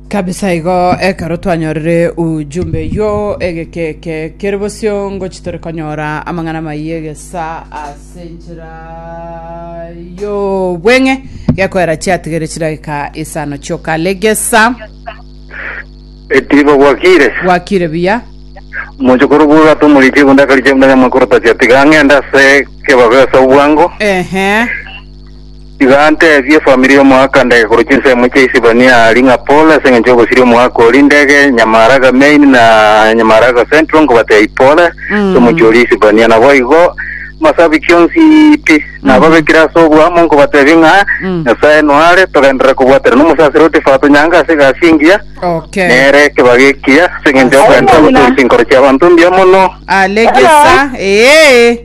kabisa igo ekero twanyorire ujumbe yo egekeke kere bosio ngochi tore konyora amang'ana maiyo egesa ase enchera yo bweng'e gekoera chiatigere chidagika isano chioka legesa Etiba gwakire gwakire buya mochokoro buru atumuriche gundakariche mudanya mwakorota chiatiga ng'enda se kebabe ase obwango ehe Tiga ntebie efamiri y'omoaka ndege korwa chinsemo chia Isibania aria ng'a pole ase engencho y'ogosiria omoaka oria ndege Nyamaharaga Main na Nyamaharaga Central nkobatea ipole ase omochie oria Isibania. Naboigo amasabiki onsi pi nababekire ase oboamo nkobatebia ng'a Nyasae noare togenderere kobwaterana omosaseri o Tifa atonyange ase egasi engiya Okay. nere ekebaga ekiya ase engencho y'okogenderera gotoria chinkoro chi'abanto mbuya mono. Alegesa. Ee.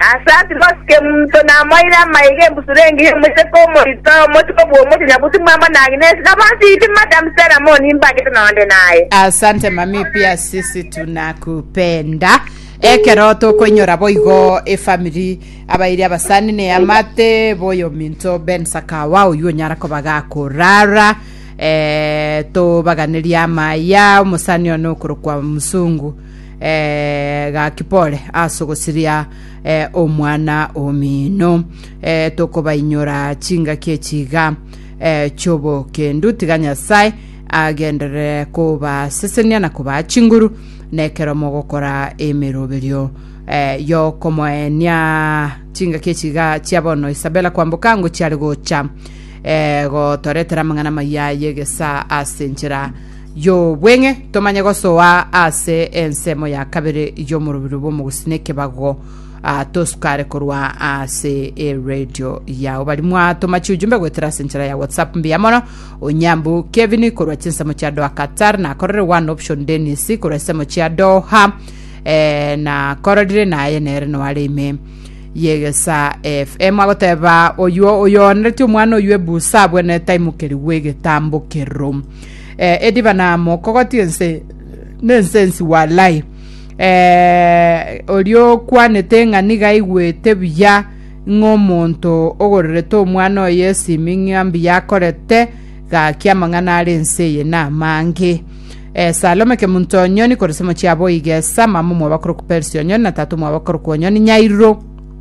Ase agwo gose monto namoire amaiga embusuro engiya y'omochie kw'omoito, omochie kobua omochie nyabuti mwabo na Agnesi, na bonsi inche Madam Stella moni mbagete nonde naye. Asante mami pia sisi tunakupenda ekero tokoinyora boigo efamiri abairi abasani ne amate boyominto Ben Sakawa oywo onyara koba gakorara eh, tobaganeria amaya omusani one okorokwa Musungu eh, gaki pole ase ogosiria eh, omwana omino eh, tokobainyora chingaki echiga eh, chiobokendu tiga nyasae agenderere kobasesenia na kobaa chinguru nekero mogokora emeroberio eh, yokomoenia chingaki echiga chia bono isabela kwamboka ngo chiare gocha eh, gotoretera amang'ana maya yegesa ase enchera Y'obweng'e, tomanye gosoa ase ensemo ya kabere y'omorobio bw'omogusii n'ekebago ah, tosukare korwa ase eredio yao. Bari mwatoma chiujumbe goetera ase enchera ya WhatsApp mbuya mono. Onyambu Kevin korwa chinsemo chia Doha Qatar nakorere one option Dennis korwa esemo chia Doha eh, nakororire naye nere noare ime yegesa FM agoteba oyuo oyoanereti omwana oyuo ebusa abwene taimukerigwe egetambokero eh, ediba na mokogoti ense nensensi walai eh, oria okwanete ng'a niga aigwete buya ng'a omonto ogorerete omwana oye esimi ng'a mbuya akorete gaki amang'ana are ense eye na amange Eh, salome kemunto onyoni korese mochiabo igesa mama omwabakoro kuperisi onyoni na tata omwabakoro kuonyoni nyairo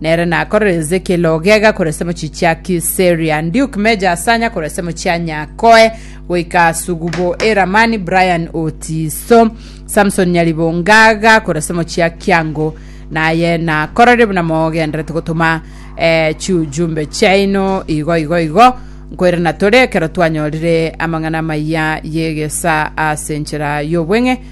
Nere nakorere Ezekiel ogega korwa esemo chichia Kiseria, Duke Meja asanya korwa esemo chia Nyakoe goika Sugubo e Ramani, Brian Otiso, Samson Nyaribo ngaga korwa esemo chia Kiango, naye nakorere buna mogenderete gotoma eh, chiujumbe chiaino igo igo igo nkoirana tore ekero twanyorire amang'ana amaya y'egesa ase enchera y'obweng'e